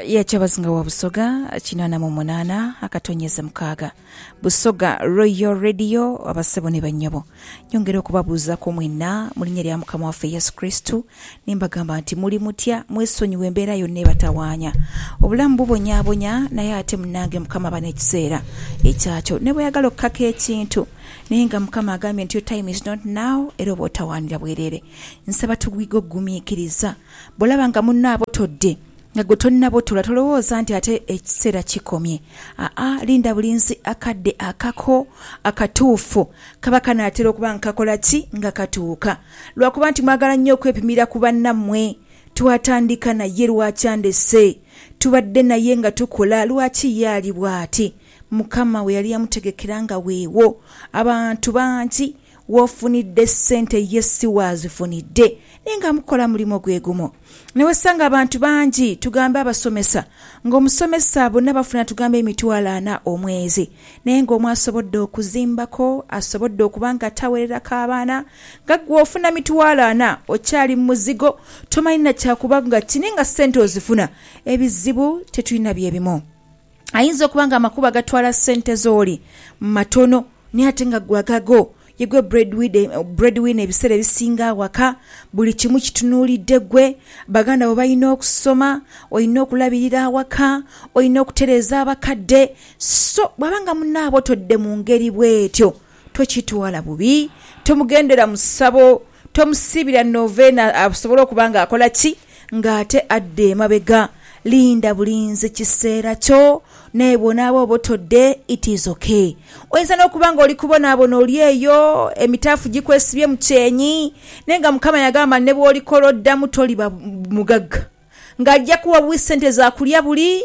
ya Kyabazinga wa Busoga kinaana mu munaana akatonyeze mukaaga. Busoga Royal Radio abasebo ni bannyabo nyongera okubabuuzaku mwenna mu linnya lya Mukama waffe Yesu Kristo ni mbagamba nti muli mutya mwesonyiwe embeera yonna ebatawaanya. Obulamu bubonyaabonya naye ate munnange Mukama aba n'ekiseera ekyakyo ne bweyagala okukaka ekintu naye nga Mukama agambye nti your time is not now era oba otawaanira bwereere. Nsaba twige okugumiikiriza Bw'olaba nga munno abotodde nga gwe tolina botola tolowooza nti ate ekiseera kikomye. Aa, linda bulinzi akadde akako akatuufu. Kaba kanaatera okuba nga kakola ki? Nga katuuka. Lwa kuba nti mwagala nnyo okwepimira ku bannammwe. Twatandika naye, lwaki andese? Tubadde naye nga tukola, lwaki ye ali bw'ati? Mukama we yali yamutegekera nga weewo. Abantu bangi W'ofunidde sente ye si w'azifunidde naye nga mukola mulimo gwe gumu. Ne wesanga abantu bangi tugambe abasomesa ng'omusomesa bona bafuna tugambe emitwalo ana omwezi naye ng'omu asobodde okuzimbako, asobodde okuba nga tawereraku abaana nga gwe ofuna mitwalo ana okyali mu muzigo tomanyi na kya kuba nga kini nga sente ozifuna. Ebizibu tetulina bye bimu. Ayinza okuba nga amakubo agatwala ssente ze oli matono naye ate nga gwe agagho. Ye gwe breadwinner ebiseera ebisinga aghaka, buli kimu kitunuulidde gwe. Baganda bo balina okusoma, olina okulabirira awaka, olina okutereeza abakadde. So bw'aba nga munaabwe otodde mu ngeri bw'etyo tokitwala bubi, tomugendera mu ssabo Tomusiibira novena asobole okuba nga akola ki? Nga ate adda emabega. Linda bulinzi kiseera kyo. Naye bw'onaaba oba otodde, it is ok. Oyinza n'okuba nga oli kubonaabona oli eyo, emitaafu gikwesibye mu kyenyi. Naye nga Mukama yagamba nti ne bw'olikola oddamu toliba mugagga. Ng'aja kuwa buwi ssente za kulya buli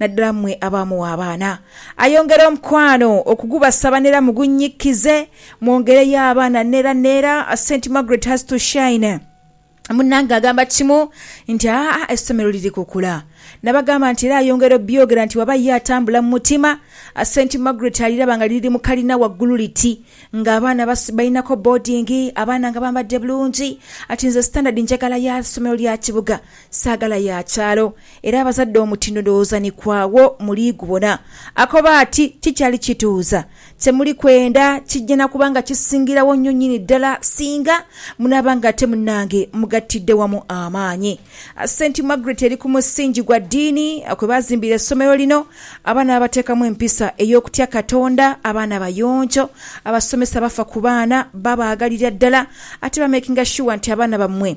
naddala mmwe abaamuwa abaana. Ayongera omukwano okugubasaba n'era mugunnyikize mwongereyo abaana n'era n'era. Saint Margaret has to shine. Munnange agamba kimu nti, Aa, essomero liri kukula. Nabagamba nti, Era ayongera obyogera nti, Waba ye atambula mu mutima, Saint Margaret aliraba nga liri mu kalina waggulu liti, nga abaana balinako boodingi, abaana nga bambadde bulungi. Ati, Nze sitandadi njagala ya ssomero lya kibuga, Saagala ya kyalo, era abazadde omutindo ndowooza ni kwagho muli gubona. Akoba ati, Kikyali kituuza. Kye muli kwenda kijja na kuba nga kisingirawo nnyo nyini ddala singa munaaba nga ate munnange mugattidde wamu amaanyi. Saint Margaret eri ku musingi gwa ddiini kwe baazimbira essomero lino, abaana babateekamu empisa ey'okutya Katonda, abaana bayonjo, abasomesa bafa ku baana, babaagalira ddala ate bamekinga shuwa nti abaana bammwe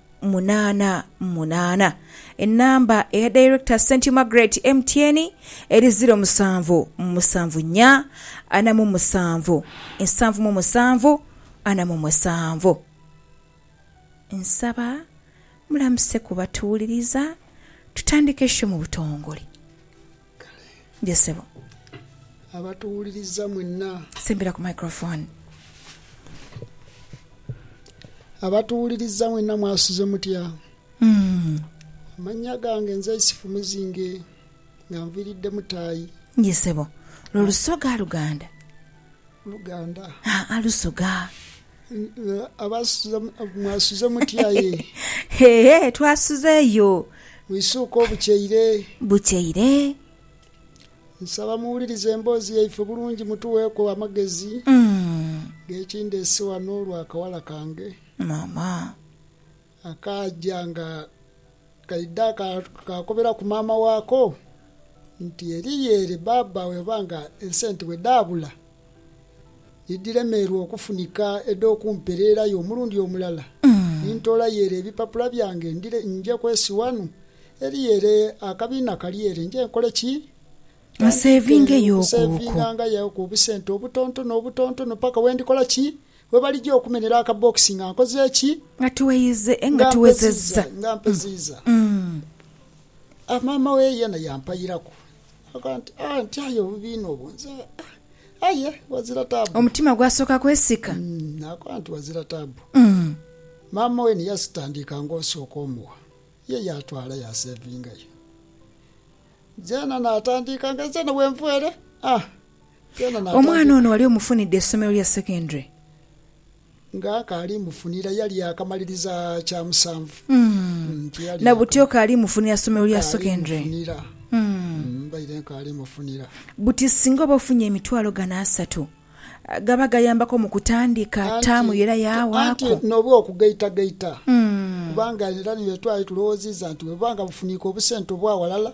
munaana munaana. Enamba eya Director St Margaret MTN eri ziro musanvu musanvu nya ana mu musanvu nsanvu mu musanvu ana mu musanvu. Nsaba mulamuse ku batuwuliriza tutandike show mu butongole. Kale. Yee ssebo. Abatuwuliriza mwenna. Sembera ku microphone. Abatuwuliriza mwenna mwasuze mutya? Amannya gange nze Isifu Muzinge nga nviiridde Mutaayi. Yee ssebo. Lwo Lusoga, Luganda? Luganda. Haa Lusoga. Mwasuze mutya ye? Hee, twasuze yo. Mwisuuke obukyeire. Bukyeire. Nsaba muwulirize emboozi yaife bulungi mutugheeku amagezi g'ekindeese wano olw'akawala kange. Mama. Akaaja nga kaidha kaakoberaku maama waako nti, Eriyo ere bbaabba we oba nga esente bwe dhaabula ni dhiremeerwa okufunika edh'okumpereerayo omulundi omulala, ni ntoolayo ere ebipapula byange nje kwesi wanu. Eriyo ere akabiina kali ere, nje nkole ki? Ntandike okuseevingangayoku obusente obutontono obutontono paka we ndikola ki? We balija okumenhera akabbokisi nga nkoze ki? Nga tuweize, nga tuwezezza. Nga mpeziiza. A Maama we yeena yampairaku. Agamba nti, Ah, ntyayo obubi inho obwo nze. Ah, aye ghazira taabu. Omutima gwasooka kwesika. Naakoba nti, Ghazira taabu. Maama we ni yasitandiika ng'osooka omugha. Ye yaatwala yaaseevingayo. Nzeena naatandiika nga nzeena bwe nvwa ere. Ah, Omwana ono wali omufunidde essomero lya secondary? Nga kaali mufunira yali yakamaliriza kya musanvu. Na buti okaali mufunira somero lya secondary? Mbaire nkaali mufunira. Buti singa oba ofunye emitwalo gano asatu, gaba gayambako mu kutandika taamu yo era yawaako. Anti n'oba okugaitagaita kubanga era nitwali tulowooziza nti bwebuba nga bufuniika obusente obwa walala.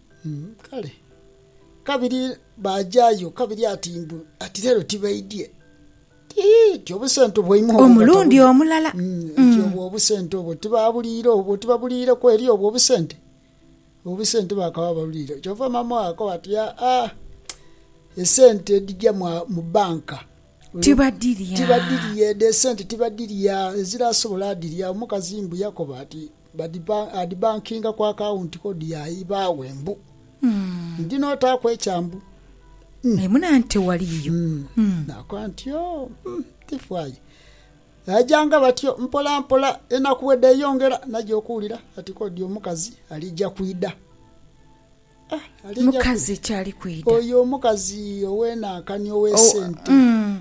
Kale kabiri baajayo kabiri ati mbu ati leero tibaidhie. Ti obusente bwaimwe obwo omulundi omulala. Ti obwo obusente obwo tibaabuliire obwo, tibabuliireku eri obwo obusente? Obusente baakaba babuliire. Kyova maama oyo akoba ati, Aa, esente edhija mu banka. Tibadhirya. Tibadhirya edho esente tibadhirya, eziraasobola adhirya. Omukazi mbu yakoba ati, Adhibankinga ku akawunti kodi ya ibaaghe mbu, Ndi n'otaaku ekyambu. Aye mune anti tewaliiyo. Naakoba nti, Yoo, tifaayo. Baajanga batyo mpolampola, enaku bwe dheeyongera naja okuwulira ati kodi omukazi alija kwidha. Mukazi ki ali kwidha? Oyo omukazi ow'enankani ow'esente,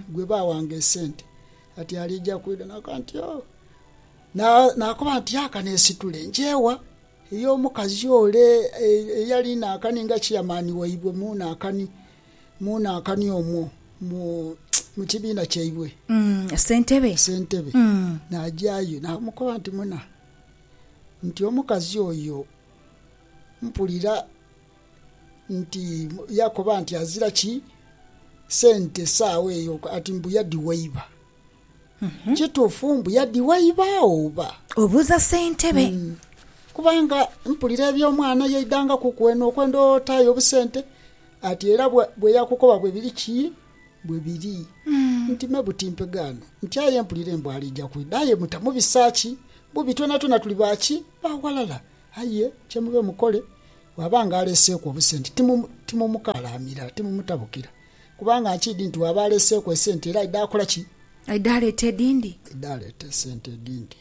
gwe baawanga esente, ati alija kwidha. Naakoba nti, Yoo. Naakoba nti, Aka neesitule nkyewa eri omukazi ole eyali naakani nga ciyamaani waibwe mu naakani omwo mu kibiina kyaibwe. Ssentebe. Ssentebe. Naagyayo naamukoba nti, Muna, nti omukazi oyo mpulira nti yakoba nti azira ki sente saagho eyo, ati mbu yadhiwaiba. Kituufu mbu yadhiwaibagho oba? Obuuza ssentebe. Kubanga mpulira eby'omwana yaidangakuku eno okwenda otaayo obusente ati era bweyakukoba bwe biri ki? Bwe biri. Nti me buti mpegaano nti aye mpulire mbu aliija kwidha aye mutamubisa ki? Bubi twonatwona tuli ba ki? Ba ghalala. Aye kye mube mukole bwaba nga aleeseeku obusente timumukalaamira, timumutabukira. Kubanga nkiidhi nti bw'aba aleeseeku esente era aidha akola ki? Aidha aleeta edhindi. Aidha aleeta esente edhindi.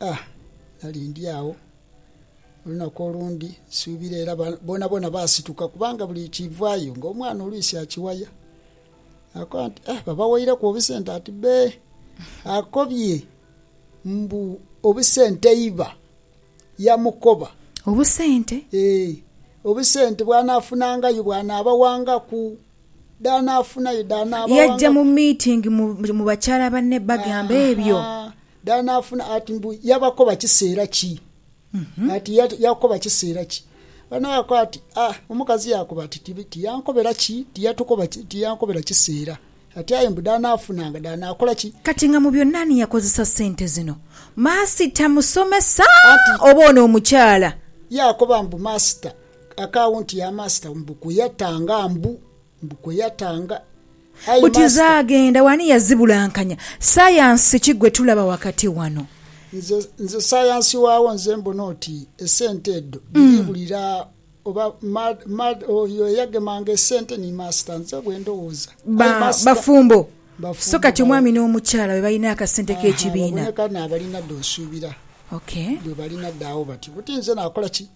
A Nali ndi agho olunaku olundi, nsuubira era boonaboona baasituka kubanga buli kiivaayo ng'omwana olwisi akiwaya. Naakoba nti, A babawaireku obusente? Ati, Bee. Akobye mbu, Obusente iba! yamukoba. Obusente? Ee, obusente bw'anaafunangayo bw'anaabawangaku. Dh'anaafunayo dh'anaabawangaku. Yaja mu meeting mu bakyala banne bagamba ebyo. Haa, dh'anaafuna ati mbu yabakoba kiseera ki? Ati yakoba kiseera ki? Banho baakoba ati, Aa, omukazi yaakoba ati tiyankobera ki? Tiyatukoba, tiyankobera kiseera. Ati aye mbu dhaanaafuna nga dhaanaakola ki? Kati nga mu byonna ani yakozesa sente zino? Maasita musomesa Anti. oba ono omukyala? Yaakoba mbu maasita. Akawunti ya maasita mbu kwe yatanga mbu mbu kwe yatanga. Aye Buti maasita. zaagenda wa? Ani yazibulankanya? Sayansi ki gwe tulaba wakati wano? Nze nze sayansi waagho nze mbona oti esente edho dhiri buli ra. Oba mad, mad, oyo eyagemanga esente ni master nze bwendowooza. Ba, Aye master. bafumbo. Bafumbo So kati bawo. omwami n'omukyala be balina akasente Aha, k'ekibiina. baboneka n'abalina dho nsuubira. Okay. Dho balina dho agho bati, buti nze nakola ki?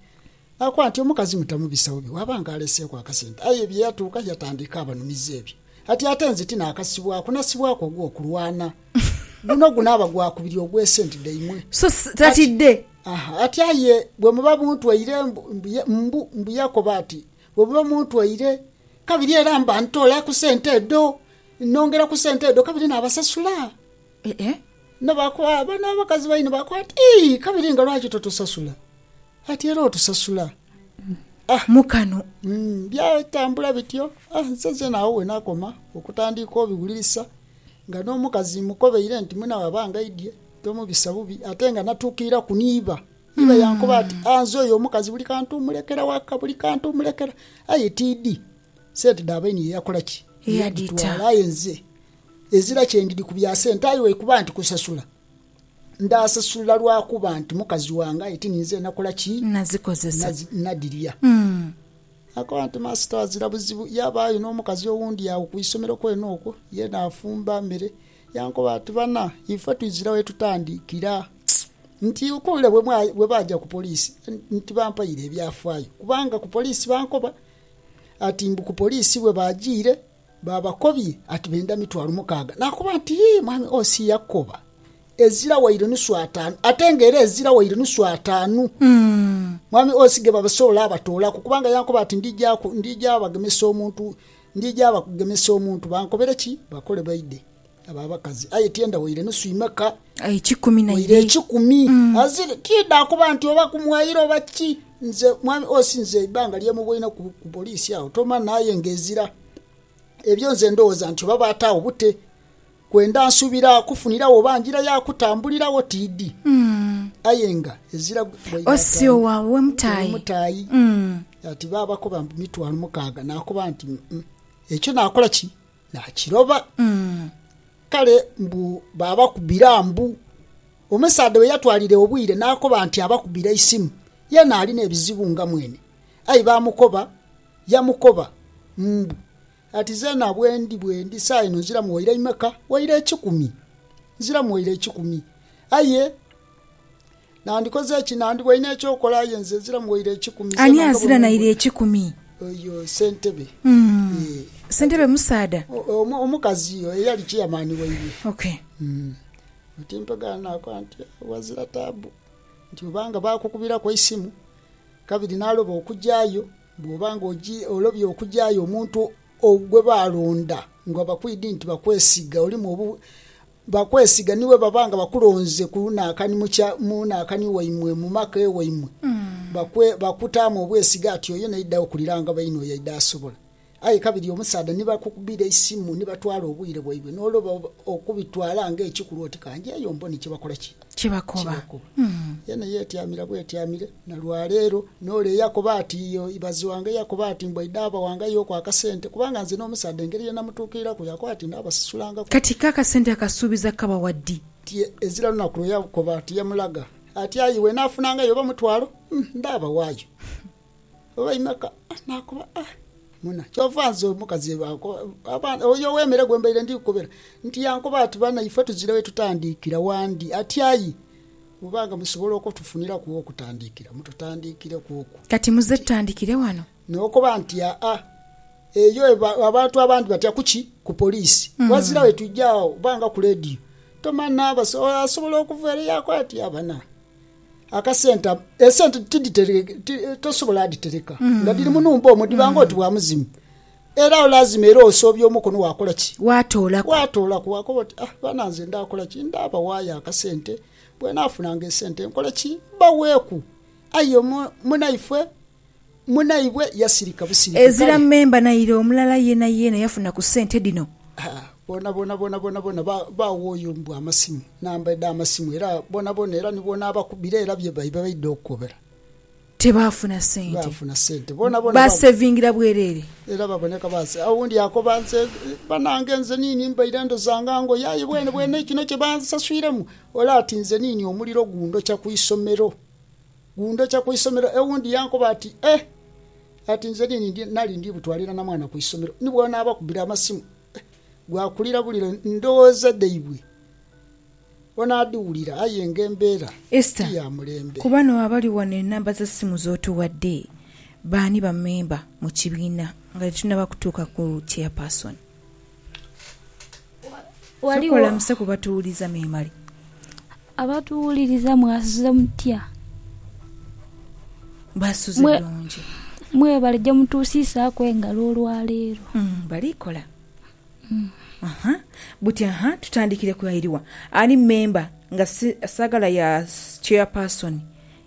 Nakoba nti, omukazi mutamubisa bubi bwaba nga aleseeku akasente. Aye bye yatuuka yatandika abanumiza ebyo. Kati ate nze ti naakasibwaku, nasibwaku ogw'okulwana. Guno gunaaba gwakubiri ogw'esente dhaimwe. So s- Kati- tatidde. Ati aye bwe muba muntwaire, mbu Yakobo ati, bwe muba muntwaire, kabiri era mba ntoola ku sente edho, nongera ku sente edho kabiri naabasasula. Bano abakazi baine baakoba ati, Ii, kabiri nga lwaki totusasula? Ati era otusasula mu kano. Byatambula bityo, nze zeena agho we naakoma okutandiika obiwulirisa nga n'omukazi mmukobeire nti muna waaba angaidhie. Tomubisa bubi ate nga natuukiiraku ni iba. Iba yankoba ati, Anze oyo omukazi buli kantu omulekera waka, buli kantu omulekera. Aye tiidhi. Sente dha baine ye yakola ki? Yadhitwala. Aye nze ezira kye ndidhi ku bya sente aye weikuba nti kusasula, ndaasasula lwa kuba nti mukazi wange aye ti ninze nakola ki? Nazikozesa. Nadhirya. Naakoba nti, Maasita, ghazira buzibu yaabaayo n'omukazi owundi agho ku isomero kwene okwo, ye naafumba mere Yankoba ati, Bana, ife twizira we tutandikira nti okwewira bwe baaja ku poliisi nti bampaire ebyafaayo kubanga ku poliisi bankoba ati mbu ku poliisi bwe baajiire baabakobye ati benda mitwalo mukaaga. Naakoba nti, Yii mwami OC yakoba ezira waire nusu ataanu ate nga era ezira waire nusu ataanu mwami OC ge basobola abatoolaku kubanga yankoba ati ndija bagemesa omuntu Ndija bakugemesa omuntu, bankobere ki? Bakole baidhe, abo abakazi. Aye tienda waire nusu imeka? Eikumi na ibiri. Waire eikumi. Azire, tiidha kuba nti oba kumwaire oba ki. Nze, mwami Osi, nze eibanga lye muboine ku, ku poliisi agho tomanha, aye ng'ezira ebyo nze ndhoghoza nti oba baataagho bute. Kwendha nsubira kufuniragho ba njira ya kutambuliragho tiidhi aye nga ezira gwe mutaayi. Ati baabakoba mbu mitwalo mukaaga naakoba nti, Uh-uh, ekyo naakola ki? Naakiroba. Kale mbu baabakubira mbu. Omusaadha we yatwalira obwire naakoba nti abakubira eisimu ye naalina ebizibu nga mwene. Aye baamukoba yamukoba mbu Ati zeena bwendi, bwendi, saagha eno nziramu waire imeka? Waire ekikumi. Nziramu waire ekikumi. Aye nandikoze ki? Nandibaire n'eky'okola, aye nze nziramu waire ekikumi. Ani azira naire ekikumi? Oyo ssentebe. Ssentebe musaadha? Omukazi eyali chairman waire. Okay. Oti mpegaano naakoba nti, Wazira taabu. Nti oba nga baakukubiraku eisimu, kabiri naaloba okujaayo. Bw'oba nga olobye okugyayo omuntu gwe baalonda nga bakwidhi nti bakwesiga, olimu obu bakwesiga ni bwe baba nga bakulonze ku lunhaakani mu nhaakani waimwe, mu maka ewaimwe, bakutaamu obwesige ati oyo naidha okulira nga baine oyo aidha asobola. Aye kabiri omusaadha ni bakukubira eisimu ni batwala obwire bwaibwe n'oloba okubitwala ng'ekikulu oti ka ngyeyo mbone kye bakola ki? Kye bakoba. Yena yeetyamira bwetyamire. Na lwa leero, n'ole eyakoba ati, Ibaze wange yakoba ati, Mbwa idhaaba wange aye oku akasente, kubanga nze n'omusaadha engeri ye namutuukiriraku yakoba ati ndhabasasulangaku. Kati ko akasente akasuubiza kabawa ddi? Ti ezira lunaku lwe yakoba ati yamulaga ati, Aye iwe naafunangayo oba mutwalo, ndhaabawaayo, oba imeka? Naakoba ati, Muna, kyova nze omukazi oyo ow'emere gwe mbaire ndi kukobera nti yankoba ati, Bana ife tuzira we tutandiikira wandi. Ati, Aye. Bwoba nga musobola okotufuniraku wokutandikira, mututandikireku okwo. Kati muze tutandikire wano. Nokoba nti, Aa, eyo eba, abantu abandi batya kuki? Ku poliisi. Ghazira wetwija agho, oba nga ku leediyo. Tomanha, basa, oyo asobola okuva ere yakola ati, Aa, bana, akasente ako, esente tidhitereke, ti, tosobola dhitereka nga dhiri mu nhumba omwo, dhiba ng'oti bwa muzimu. Era olazima era osoobya omukono waakola ki? Waatoolaku. Waatoolaku, waakoba oti, Ah, baana nze ndaakola ki? Ndaabawaayo akasente, bwenaafunanga esente nkole ki? Mbaweeku. Aye munaifwe, munaibwe yasirika busirike, kale. Ezira memba naire omulala yeenayeena yafuna ku sente dhino. Ha, boonaboona, boonaboona, boona ba, baawooyo mbu amasimu, namba edh'amasimu, era boonaboona, era ni bw'onaabakubira era bye bye baidha okukobera. Tebaafuna sente. Tebaafuna sente. Bona bona ba. Baasevingira bwereere. Era baboneka ba. Owundi akoba nti, Banange, nze niini mbaire ndozanga ngoye, aye bwenebwene ekino kye bansaswiremu. Ole ati, Nze niini omuliro gundhokya ku isomero. Gundhokya ku isomero. Ewundi yankoba ati, Eh! Ati, Nze niini ndi, nali ndi butwalira na mwana ku isomero. Ni bwona abakubira amasimu, eh, gwakulira buliro ndhoghoza dhaibwe. Onaadhiwulira aye nga embeera ti ya mulembe. Esther, Ku bano abali wano enamba za simu z'otuwadde baani bamemba mu kibiina nga tetunnaba kutuuka ku chairperson? Sooka olamuse ku batuwuliriza memale. Abatuwuliriza mwasuze mutya? Baasuze bulungi. Mwebale gye mutuusiisaaku engalo olwaleero. Bali kola. Ahaa. Buti ahaa tutandikire ku airiwa ali member nga saagala ya chairperson.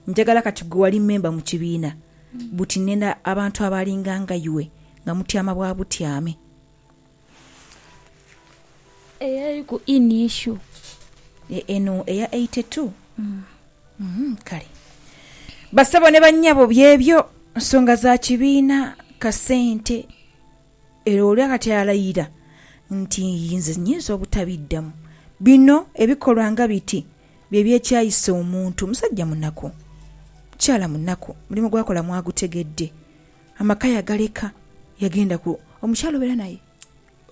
Njagala kati gwe wali member mu kibiina buti nenda abantu abalinga nga iwe nga mutyama bwa butyame. Eyo eri ku in issue. Eno eya eighty two? Kale. Basebo ne bannyabo byebyo nsonga za kibiina, kasente. Era oli ghati alayira nti inze nyinza obutabiddamu. Bino ebikolwa nga biti bye byekyayisa omuntu. Musajja munaku, mukyala munaku, omulimu gw'akola mwagutegedde, amaka yagaleka yagenda ku. Omukyala obeera naye?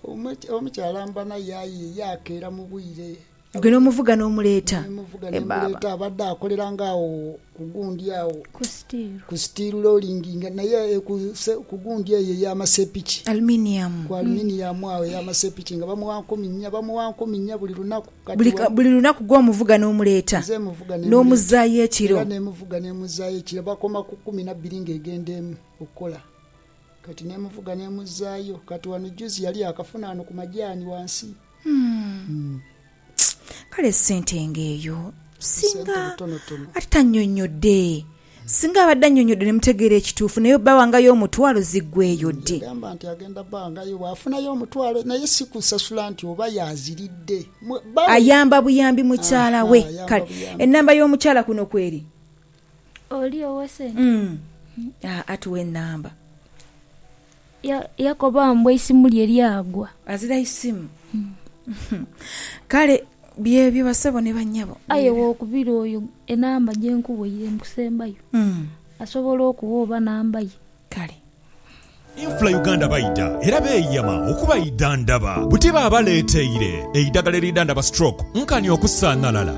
Omukyala mba naye aye yaakeera mu bwire. Gwe n'omuvuga n'omuleeta. E baaba. Abadde akoleranga agho ku gundi agho. Ku steel. Ku steel rolling nga naye e ku ku gundi eyo eya masepiki. Aluminium. Ku aluminium agho eya masepiki nga bamugha nkumi nnya, bamugha nkumi nnya buli lunaku. Buli ka, buli lunaku gwe omuvuga n'omuleeta. Nze muvuga n'emuleeta. N'omuzzaayo ekiro. Era n'emuvuga n'emuzzaayo ekiro. Bakoma ku kumi na bbiri ng'egenda emu okukola. Kati n'emuvuga n'emuzzaayo. Kati wano juzi yali akafuna wano ku majaani wansi. Kale sente ng'eyo singa ate tannyonnyodde? Singa abadde annyonnyodde ne mutegeera ekituufu naye bba wangayo omutwalo ziggweeyo ddi? Yagamba nti agenda bangayo bw'afunayo omutwalo naye si kusasula nti oba y'aziridde bba we. Ayamba buyambi mukyala we. Kale ennamba y'omukyala kuno kweri? Oli ow'esente. Aa tuwe ennamba. Yakoba mbu eisimu lye lyagwa. Azira isimu. Kale byebyo basebo ni banyabo. Aye wokubira oyo enamba gye nkuwaire mu kusembayo asobola okuwa oba namba ye. Kale. Infra Uganda baidha era beeyama okubaidhandhaba buti baabaleeteire eidhagala eridhandhaba stroke nkani okusaanhalala.